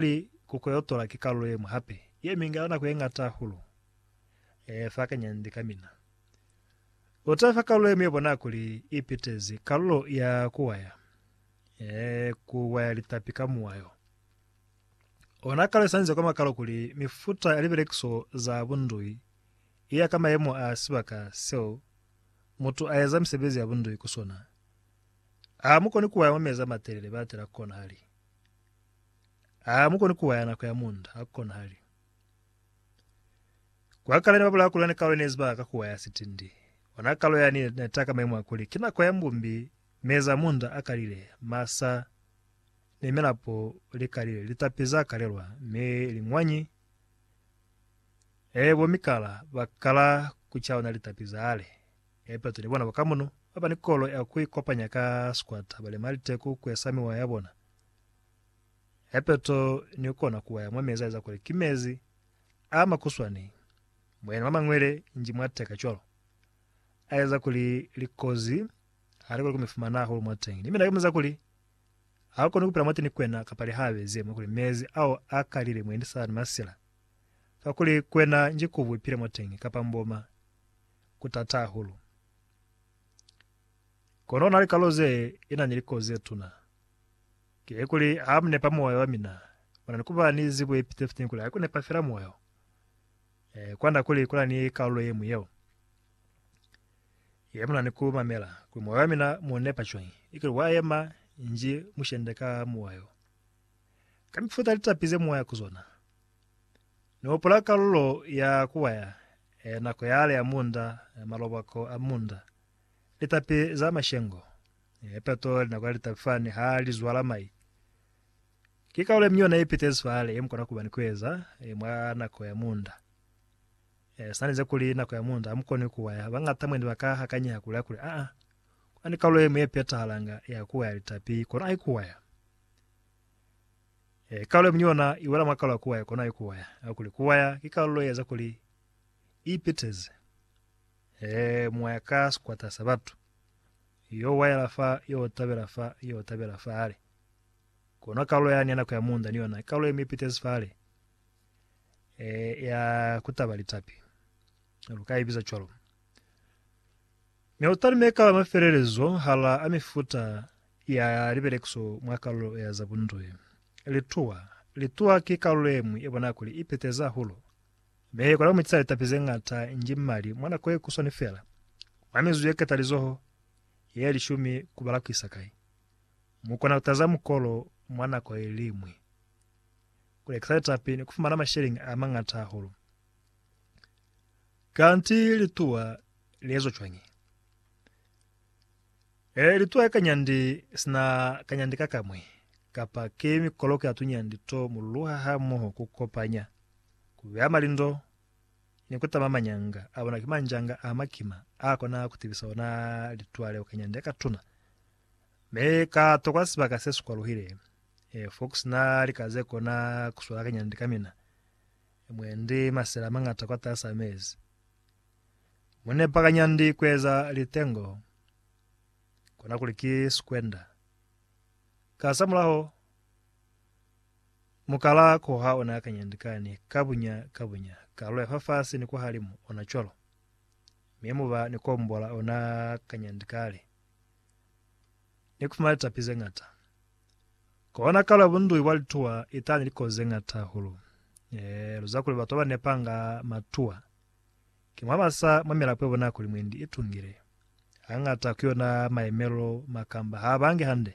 Li kuko yo tola ki kalulo yemwi hape ye minga nako ye ngata hahulu. E fakanya nde ka mina. U ta fa kalulo yemwi ye bona kuli i pitezi kalulo ya ku waya, ee, ku waya litapi ka muwayo. O na kalwesanze kwa makalo kuli mifuta ya libelekiso za bundui i ya ka mayemo a sibaka seo mutu a eza misebezi ya bundui ku sona. Ha mu koni ku waya mwa mezi a matelele batela ku konahali. Ha mu koni kuwaya nako ya munda, ha ku konahali. Kwa kale ne ba bulaa kuli ona kalo ne ziba ka kuwaya sitindi. Ona kalo yani ne, ne taka maimu a kuli ki nako ya mbumbi, mezi a munda a kalile, masa ni milapo li kalile, litapi za kalelwa, mi liñwanyi, ee, bo mikala ba kala ku cauna litapi zale. E peto ni bona ba ka muno, ba ba ni kolo ya ku ikopanya ka sikwata, ba lema liteku ku esa miwa ya bona. ya peto ni kona ku waya mwa mezi a eza kuli ki mezi a makuswani, moyeni mwa mañwele nji mwa teka cwalo, a eza kuli likozi ha li koni ku mi fumana hahulu mwa teñi. Ni mina ki muziza kuli, Ha u koni ku pila mwati ni kwena kapa li ha bezi yemwe kuli mezi ao a kalile mwendi sa ni masila. Kakuli kwena nji kubu ipile mwateñi kapa mboma, ku tata hahulu. Kono na likalo ze i na ni likozi ze tuna. Kilikuli ha mu nepa moyo wa mina, mu na ni ku ba ni zibo ye pite fiteni kuli ha ku nepa fela moyo. E kwanda kuli ku na ni kalulo ye ñwi yeo ye mu na ni ku mamela, kuli moyo wa mina mu nepa cwañi, i kuli wa yema nji mushende ka moyo, ka mifuta ya litapi ze mu waya ku zona. Ni hupula kalulo ya ku waya, e nako yale ya munda, malobako a munda. Litapi za mashengo, peto, linako ya litapi fani ha li zwala mai, ki kaulo yemi yona yepitezi fale yemukona kuba ni kueza mwa nako ya munda. Sinalinze kuli nako ya munda hamukoni kuwaya, bangata mwendi baka hakanyeha kuli hakuli, Aa, kuna ni kaulo yemwi yepetahalanga ya kuwaya litapi, kono ai kuwaya. Kaulo yemi yona iwela mwa kaulo ya kuwaya, kono ai kuwaya. Kakuli kuwaya ki kaulo yeeza kuli ipiteze. Hee moya ka sikwata sa batu, yo wayela fa, yo tabela fa, yo tabela fale. Kono kalulo yani ya nako ya muunda ni yona kalulo yemipitezi fale, e, ya kutaba litapi, lu ka ibiza cwalo. Mi lu talume kala mafelelezo hala a mifuta ya libelekiso mwa kalulo ya za bunduhi. Lituwa, lituwa ki kalulo yemwi ye bonaa kuli ipitezi ahulo, Mi ku laumitiza litapi ze ñata nji mali mwa nako ye kuswani fela, mwa mizuzu ye ketalizoho ye lishumi ku bala ku isa kai? Mu kona ku taza mukolo mwa nako ye liñwi. Ku lekisa litapi ni ku fumana masheleñi a mañata hahulu. Kanti lituwa li ezwa cwañi? Ee, litwa ka nyandi sina ka nyandi ka kamwi, kapa ki mikoloko ya tunyandi to mululuha hamoho ku kopanya, ku beya malindo, ni ku tama manyanga a bona ki manjanga a makima a kona ku tibisa ona litwa leo ka nyandi ya katuna. Mi ka tokwa sibaka se si kwaluhile, ee, fo ku sina lika ze kona ku swela ka nyandi ka mina, mwendi masela a mañata kwataas'a mezi. Mu nepakanya ndi ku eza litengo, kona kuli ki sikwenda. Kasamulaho, mu kala ku ha ona kanya ndi kani, ka bunya ka bunya, kalu ya fafasi ni kwahalimu, ona cwalo. Mi mu ba ni ku ombola ona kanya ndi kale. Ni ku fumana litapi ze ñata. Kona kalu ya bunduhi bwa lituwa itani likozi ze ñata hahulu. Ee, lu ziba kuli batu ba ba nepanga matuwa. Ki mwa ba sa mamela kwebo nako limwendi i tungile. Hañata ku yona mayemelo ma kamba ha bangi hande.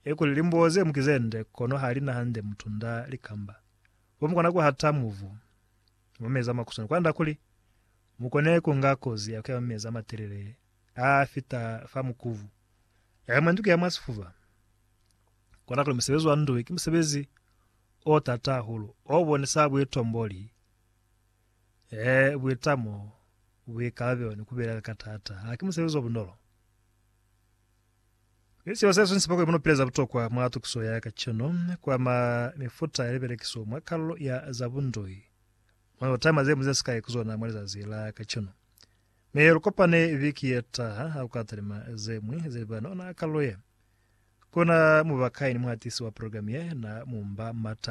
I kuli limbuo ze mu ki ze nde kono ha li na hande mutunda li kamba. Bo mu kona ku hata muvu, mwa mezi a makuswana kwand'a kuli mu kone ku nga kozi ya ku ya mwa mezi a matelele a fita fa mukuvu. Y'a mwendi ku ya mwa sifuba. Kona kuli musebezi wa ndu ki musebezi o t'ata hahulu, o bonisa buitomboli. He, buitamo, buikalabelo, ni kubilaela ka taata, haki musebezi o bunolo. Mi seo se swisisa kuli muno pila za butokwa mwa tukiso ya kacenu kwa ma mifuta ya libelekiso mwa kalulo ya za bundoi. Mwa yo taima ze mu ze sikai ku zona mwa lizazi la kacenu. Mi he lu kopane viki ye taha, ha ku ka talima ze ñwi ze liba na ona kalulo ye. Ku na muba kai ni muhatisi wa program ye na mu mba mata?